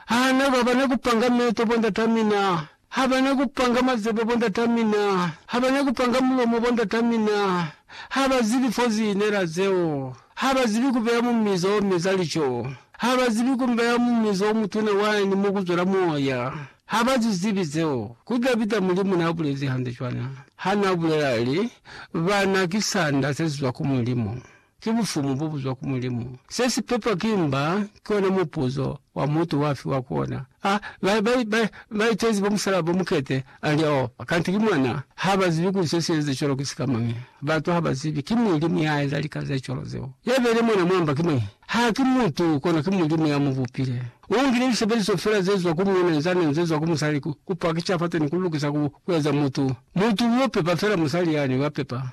Ha na ka ba na ku panga meto, bondat'a mina ha ba na ku panga mazebe, bondat'a mina ha ba na ku panga mulomo, bondat'a mina ha ba zibi fo zi inela zeo, ha ba zibi ku beya mu mizo o meza lico, ha ba zibi ku beya mu mizo o mutuna wani mo ku zwela moya, ha ba zu zibi zeo. Ku Davida, Mulimu n'a bulezi hande cwana ha n'a bulela, a li, Bana ki sanda se si zwa ku Mulimu. ki Bufumu bo buzwa ku Mulimu. Se si pepwa ki mba ki ona mupuzo wa mutu wa fiwa ku ona. A ba, ba, ba, ba itezi bo musalaba bo mukete, a li, Oh, kanti ki mwana. Ha ba zibi kuli se si eza cwalo ki sika mañi. Batu ha ba zibi. Ki Mulimu ya eza lika ze cwalo zeo. Ya beile mwana mwa mba ki mañi? Ha ki mutu, kono ki Mulimu ya mu bupile. U ngile lisebeliso fela ze zwa ku muuna nza nani ze zwa ku musali ku, ku pakisha fateni, ku lukisa, ku, ku eza mutu. Mutu u yo pepa fela musali yani, wa pepa.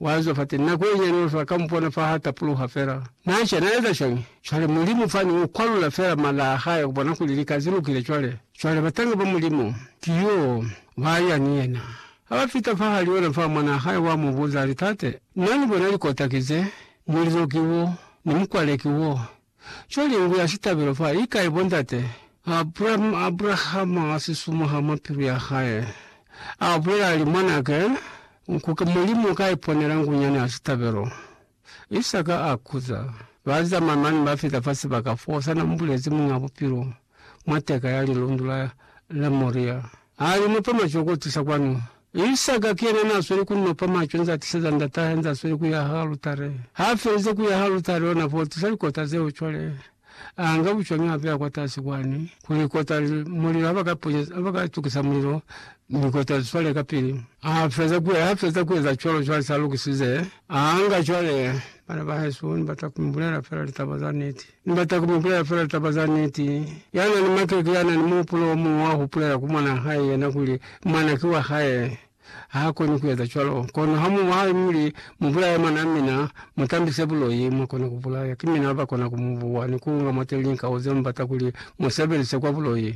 Waziba fate nako yenyiani bato ba ka mupona fa ha tapuluha fela. Na ca, na eza cwañi? Cwale, Mulimu fani u kwalula fela mala a Hae kubona kuli lika zi lukile cwale. Cwale, batanga ba Mulimu, ki yo ba ya ni yena. Ha ba fita fa hali ona fa, Mwanaa Hae wa mu buza, a li, Tate, Na ni bona likota ki ze, mulizo ki wo, ni mukwale ki wo, Cwa lingu ya sitabelo fa li kai, bo ndate? Abraham, Abrahama a si sumuha mwa pilu ya hae, a bulela, ali, Mwanake, nkuke Mulimu ka iponela ngunyana ya sitabelo. Isaka a kuza. Ba zamaya mane ba fita fa sibaka fo sa na mbulezi Muñ'a Bupilo. mwa teka ya lilundu la, la Moria. Ha li nopa macwe ku tisa kwanu. Isaka ki yena n'a sweli ku nopa macwe nz'a tiseza ndat'ahe nz'a sweli ku yaha alutare. Ha felize ku yaha alutare, ona f'o tisa likota zeo cwale. A nga bucwañi a beya kwatasi kwani, ku likota li, mulilo ha ba ka ponya, ha ba ka tukisa mulilo, mi likota li swale kapili. A feza ku, ha feza ku eza cwalo, cwale s'a lukisize, a nga cwale, bana ba hesu, ni bata ku mi bulela fela litaba za niti. Ni bata ku mu bulela fela taba za niti. Ya na ni makeke ya na ni muhupulo o muñwi wa hupulela ku mwan'a hae yena kuli mwana ki wa hae. Ha koni ku eza cwalo. Kono ha mu mwahabi muli, Mu bulaye mwan'a mina, mu tambise buloi, mwa kona ku bulaya. Ki mina ba kona ku mu buwa ni ku unga mwateli linkau ze mu bata kuli mu sebelise kwa buloi.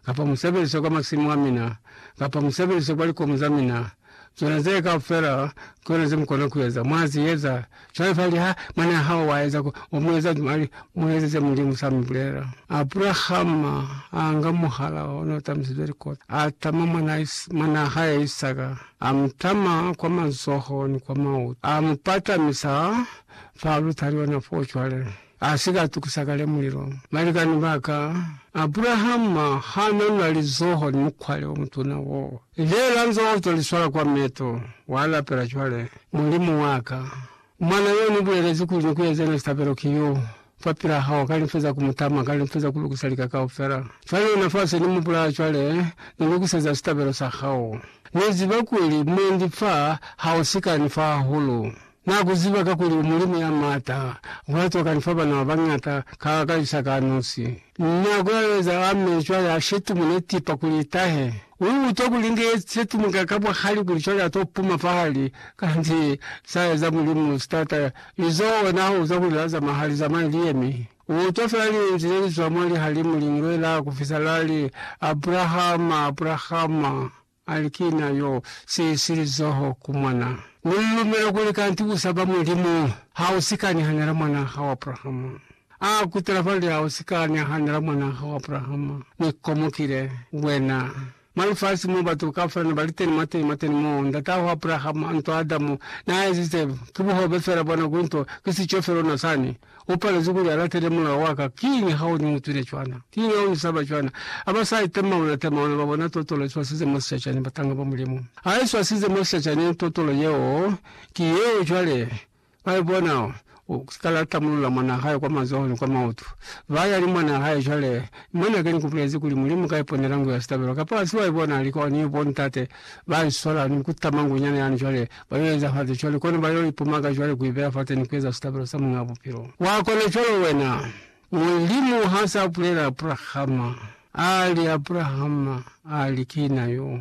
kapa mu sebelise kwa masimu a mina, kapa mu sebelise kwa likomu za mina, zona zee kaufela ki zona ze mu kona ku eza. Mwa zi eza. Cwale fa liha mwanaa hao wa eza ko, wa mu eza cwale, mu eze ze Mulimu sa mi bulela. Abrahama a nga muhala o n'o tamisizwe likoti, a tama mwanaa, mwanaa hae Isaka, a mu tama kwa mazoho ni kwa mautu, a mu patamisa fa lutaliona foo cwale. A si ka tukisa kale mulilo. Balikani ba ka, Abrahama ha na na lizoho ni mukwale o mutuna wo. Ile la nzoho to li swala kwa meto, wa lapela cwale, Mulimu wa ka, mwana yo ni bulelezi kuli ni ku eze yona sitabelo ki yo fa pila hao, ka limfe za ku mu tama, ka limfe za ku lukisa lika kaufela. Fa yona fa se ni mu bulaya cwale, ni lukiseza sitabelo sa hao. Ni ziba kuli mwendi fa ha u si ka ni fa hahulu. Na ku ziba kakuli u mulimi ya m'ata, ku la tokani fa bana ba bañata ka ka isa ka nosi. Na ku laeza a meli cwale a shetumu ne tipa kuli i tahe. U utwa kuli inge ye shetumu ka ka buhali kuli cwale a to puma fahali, kanti sa eza Mulimu si tata. Lizo ona ha uzwa kuli la zama ha li zamaye li yemi. U utwa fela linzwi le li zwa mwa lihalimu li ngwela ku fisa la li, Abrahama, Abrahama! Ali, Ki Na yo si si lizoho ku mwana. Ni lu lumela kuli kanti u saba Mulimu. Ha u si ka nahanela mwana hao Abrahama. A kutela fale, Ha u si ka nahanela mwana hao Abrahama. Ni komokile, wena. Mwa lifasi mo batu ka fela ne ba li teni, mwateni, mwateni mo, ndata hao Abrahama, nto Adamu na ezize, ki buhobe fela bona ku nto, ki sico fela ona sani. U palezi kuli a latele mulao wa ka. Kiñi ha u ni utwile cwana? Kiñi ha u ni saba cwana? Ha ba sa itemaula temaula, ba bona totolo i swasize mo sicacani batanga ba Mulimu. Ha i swasize mo sicacani, totolo yeo ki yeo cwale ba i bona. U ka la tamulula mwanaa hae kwa mazoho ni kwa maoto. Ba ya ni mwanaa hae cwale, Ni mwan'a ke ni ku bulezi kuli Mulimu ka iponela ngu ya sitabelo. Kapo ha si wa i bona? Li kwa ni bo ntate ba i sola ni ku tama ngu nyana yani cwale. Ba yo eza fate cwale, kono ba yo ipumaka cwale ku ibeya fate ni ku eza sitabelo sa Muñ'a Bupilo. Wa kona cwalo wena. Mulimu ha sa bulela Abrahama, a li, Abrahama, a li, Ki na yo.